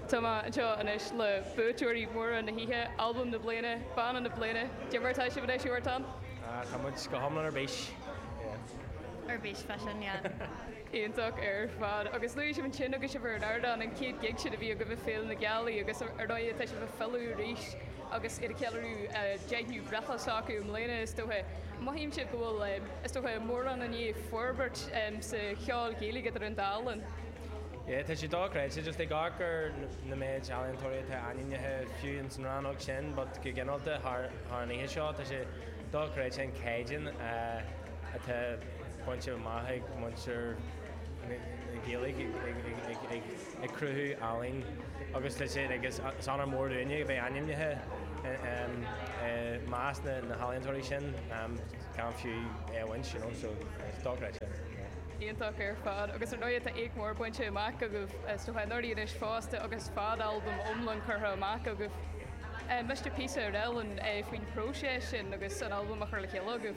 Tá mé anseo anois le buaiteoirí móra na hoíche, Albam na Bliana, Banna na Bliana, cad é mar atá sibhse anois Huartan? Tá muid go hiomlán ar bís, yeah. Ar bís freisin, yeah. Iontach ar fad. Agus luaigh sibh ansin agus sibh ar an ardán, an chéad gig sin a bhí agaibh ag Féile na Gealaí agus ar ndóigh tá sibh ag filleadh arís. agus iad ag ceiliúradh an deichiú breithlá s'acu i mbliana is dócha. Mothaímse go bhfuil, is dócha, mórán i ndiaidh forbairt sa cheol Gaeilge idir an dá linn. Yeah, tá sé dochreidte, just ag amharc ar na méid ealaíontóirí atá ainmnithe, fiú ins an rannóg sin, but go ginearálta thar an oíche seo, tá sé dochreidte an caighdeán atá bainte amach ag muintir na Gaeilge ag. ag cruthú ealaín agus litir agus is onóir mór dúinne a bheith ainmnithe i measc na healaíontóirí sin gan fiú é a bhaint, you know, so it's dochreidte. Iontach ar fad agus ar ndóigh tá éacht mór bainte amach agaibh is dócha anuraidh anois fosta agus fadalbam iomlán curtha amach agaibh. Miste píosa a rá linn faoin phróiseas sin agus an albam á chur le chéile agaibh.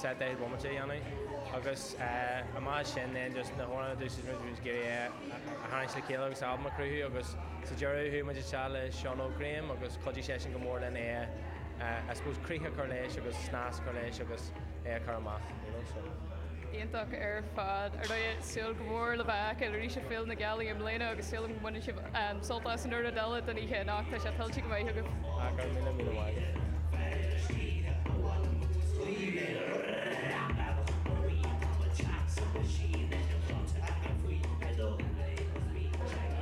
sa deichiú bomaite a dhéanamh agus amach as sin then just na hamhráin a d'úsáid muid bhí muid ag iarraidh é a tharraingt le chéile agus albam a chruthú agus sa deireadh chuaigh muid isteach le Seán Óg Graham agus chuidigh sé sin go mór linn é a I suppose críoch a chur leis agus snas a chur leis agus é a chur amach you know so. Iontach ar fad. Ar ndóigh, ag súil go mór le bhur bhfeiceáil arís ar Féile na Gealaí i mbliana agus súil agam go mbaineann sibh sult as an chuid eile den oíche anocht. Tá sé tuillte go maith agaibh. Ah, go raibh míle, míle maith.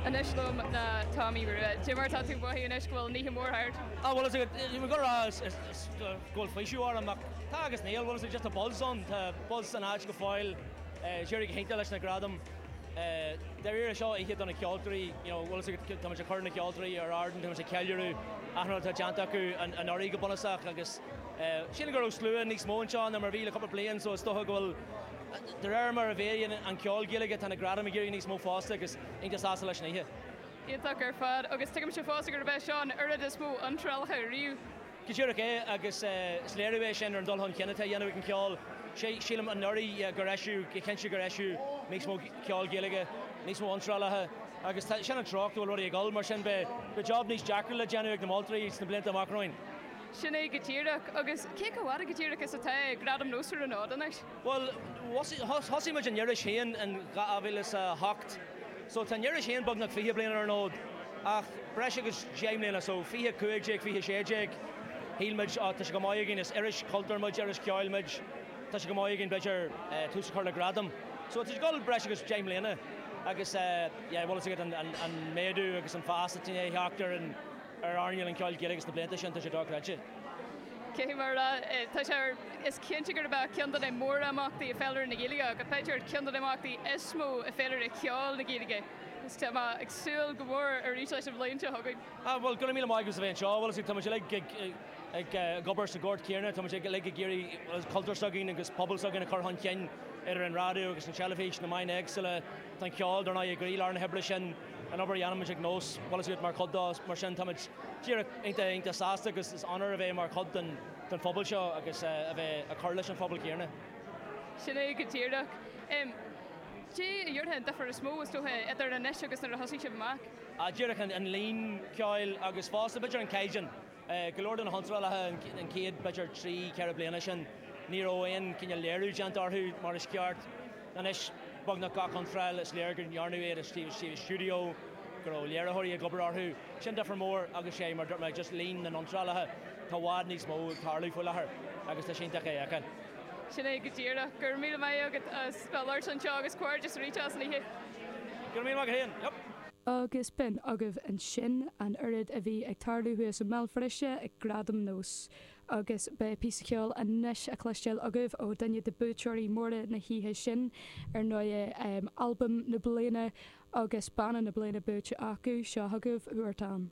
Anois liom tá Tomaí Rua. Cad é mar atá tú ag mothú anois go bhfuil an oíche mór thart? Ah, bhfuil fhios agat go raibh go bhfuil faoiseamh orm, ach tá agus níl, bhfuil fhios agat just tá buzz ann, tá buzz san áit go fóill. D'éirigh go hiontach leis na gradaim. Dáiríre, seo oíche do na ceoltóirí, you know, bhfuil fhios agat, tá muid ag cur na ceoltóirí ar ardán, tá muid ag ceiliúradh achan rud atá déanta acu anuraidh go bunúsach agus sílim go raibh slua níos mó anseo ná mar a bhí le cúpla bliain so is dócha go bhfuil, de réir mar a mhéadaíonn an ceol Gaeilge tá na gradaim ag éirí níos mó fosta agus iontach sásta leis an oíche. Iontach ar fad agus tuigimse fosta gurb é seo an oiread is mó iontrálacha riamh. Go díreach é agus is léiriú é sin ar an dul chun cinn atá á dhéanamh ag an cheol. Sílim anuraidh gur eisíodh, go cinnte gur eisíodh níos mó ceol Gaeilge, níos mó iontrálaithe agus tá, sin an treocht go bhfuil rudaí ag dul, mar sin beidh job níos deacra le déanamh ag na moltóirí sna blianta amach romhainn. Sin é go díreach, agus cé chomh fada go díreach is atá Gradaim NÓS ar an fhód anois? Bhuel, thosaigh muid an iris féin in 2008 so tá an iris féin beagnach fiche bliain ar an fhód ach breis agus deich mbliana so fiche cúig déag, fiche sé déag shíl muid á tá sé chomh maith againn, is iris chultúir muid, iris cheoil muid, tá sé chomh maith againn b'fhéidir tús a chur le gradam so tá sé ag dul breis agus deich mbliana agus yeah bhfuil fhios agat an méadú agus an fás atá i ndiaidh a theacht ar an ar earnáil an cheoil Ghaelaigh sna blianta sin, tá sé dochreidte. Cé mar atá sé is cinnte gurb é ceann de na mórimeachtaí i bhféilire na Gaeilge agus b'fhéidir ceann de na himeachtaí is mó i bhféilire cheoil na Gaeilge agus tá mé ag súil go mór arís leis an bhliain seo chugainn. Ah bhuel, gura míle maith agat as a bheith anseo. Bhuel, is é, tá muid uilig ag ag ag obair sa ghort chéanna, tá muid uilig ag iarraidh bhuel cultúr s'againn agus pobal s'againn a chur chun cinn idir an raidió agus an teilifís, na meáin éagsúla, tá an ceol dar ndóigh i gcroílár na hoibre sin. an obair a dhéanaimid ag Nós, bhuel is iad mar chuid dó, mar sin táimid díreach iontach iontach sásta agus is onóir a bheith mar chuid den den phobal seo agus a a bheith ag cur leis an phobal céanna. Sin é go díreach. Céard a déarfá an difear is mó is dócha idir anois agus nuair a thosaigh sibh amach? Díreach an an líon ceoil agus fosta b'fhéidir an caighdeán. Go leor de na hiontrálaithe an chéad, b'fhéidir, trí, ceithre bliana sin ní raibh aon cineál léiriú déanta orthu mar is ceart. Anois beagnach gach iontráil is léir go ndearnadh iad istigh i stiúideo, go raibh léiritheoirí ag obair orthu. Sin difear mór agus is é, mar a dúirt mé, just líon na n-iontrálaithe. Tá i bhfad níos mó ag tarlú faoi láthair agus tá sé iontach é a fheiceáil. Sin é go díreach. Go raibh míle maith agat as bheith ag labhairt anseo agus comhghairdeas aríst as an oíche. Go raibh míle maith agat féin. Agus b'in agaibh ansin an oiread a bhí ag tarlú thuas i mBéal Feirste ag Gradam Nós. Agus beidh píosa ceoil anois á chloisteáil agaibh ó dhuine de bhuaiteoirí móra na hoíche sin, ar ndóigh, albam na bliana agus banna na bliana buaite acu, seo chugaibh Huartan.